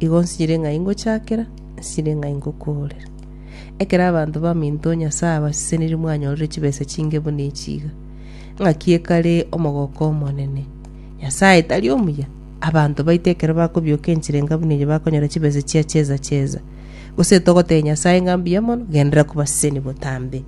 Igo nsinyire ng'a ingochakera, nsinyire ng'a ingokoorera. Ekero abanto baminto Nyasae abasesenirie mwanyorire chibesa chinge buna echi iga, ng'aki ekare omogooko omonene? Nyasae tari omuya? Abanto baito ekero bakobioka enchera enga buna eria bakonyora chibesa chia cheza cheza. Gose togotebia Nyasae ng'a mbuya mono, genderera kobaseseni botambe.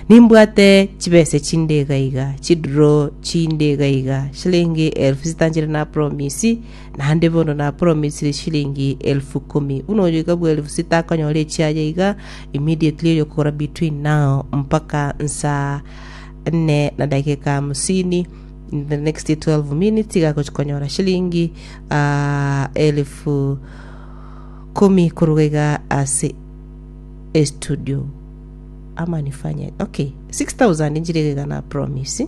Nimbwate chibesa chinde iga iga, chiduro chinde iga iga, shillingi elfu zitanchere na promise, Naende bono napromisire chilingi elfu ikomi, buna oyoika bw'elfu sita akonyora echiaye iga immediately oyokogora between now mpaka nsaa ene na dakika hamsini, in the next 12 minutes iga agochia konyora chilingi ah, elfu ikomi koruga iga ase estudio ama nifanye okay 6000 nchire iga iga na promise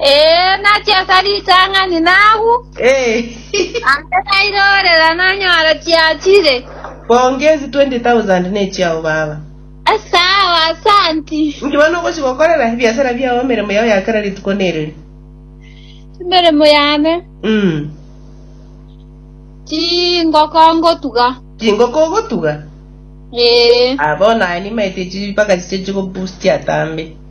Ee, nachaka ritang'ani nagwo, Ee, ande nairorera nanyora chiachire. bonge ezi 20,000 nechiao baba. Asao, asanti. Inki bono ogochi gokorera ebiasara biao emeremo yao ya kera rituko nereri? Emeremo yane, Mm. chingoko ngotuga. Chingoko ogotuga? Ee. Ah, bono aye nimaete chi mpaka chiche chigobustia tambe.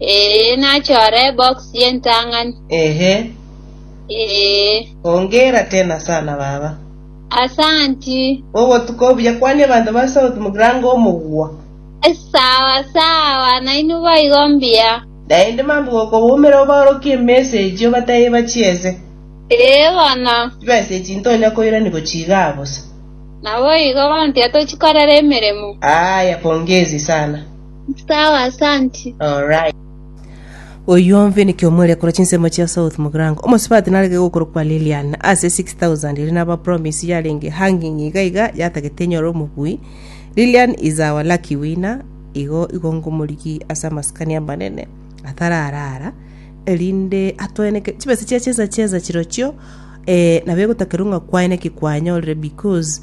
Ee, nachore ebox y'entang'ani. Ehe. Ee. Hongera tena sana baba. Asanti. Obotuko obuya kwania abanto ba South Mugrango omogwa. Sawa sawa, nainwe boigo mbuya. Naende mambia gokoboomera obaorokie emesa echi obatebie bachiese. Ee bono. Chibesa echi ntonya koirani gochia iga bosa. Naboigo, bono tiga tochikorera emeremo. Aaya, pongezi sana. Sawa, asanti. Alright. Oyio ombe niki omwere korwa chinsemo chia south mugrango omosubati narege gokorokwa lilian ase 6000 eri naba promise yarenge hanging iga iga yatagete enyore omobui lilian is our lucky winner igo igo ngomorigi ase amasikani amanene atararara erinde atweneke chibesa chia chesa chesa chirochio eh, nabo egotakerwa ng'a kwaye naki kwanyorire because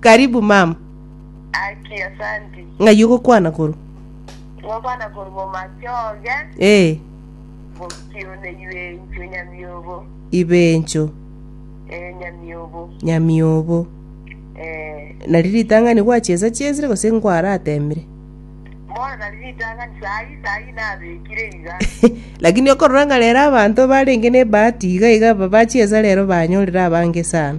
Karibu mam. Aki asanti. Ng'ai ogokwana koru? Ngokwana koru bomachoge. Eh. Bokione ibencho nyamiobo. Ibencho. Eh, nyamiobo. Nyamiobo. Eh. Nari ritang'ani gwachesa chesire gose nkwaratemire? Bono nari ritang'ani sayi sayi nabekire iga. Lakini okorora ng'a rero abanto barenge ne bahati iga iga bachiesa rero banyorire abange sana.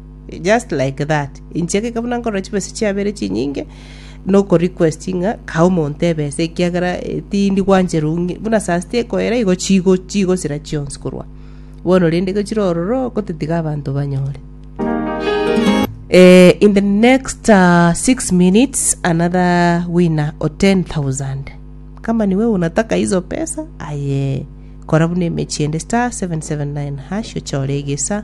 Just like that. Inche ekeka buna nkorora chibesa chiabere chinyinge, noko request ng'a kae omonto ebesa ekiagera eh, tindi gwanchera ong'e. Buna saa sita ekoera igo chigo chigosira chionsi korwa. Bono rende gochira ororo gotetiga abanto banyore. Eh, in the next uh, six minutes another winner o 10000 kama niwe unataka hizo pesa aye kora buna emechi ende star 779 hash ochore egesa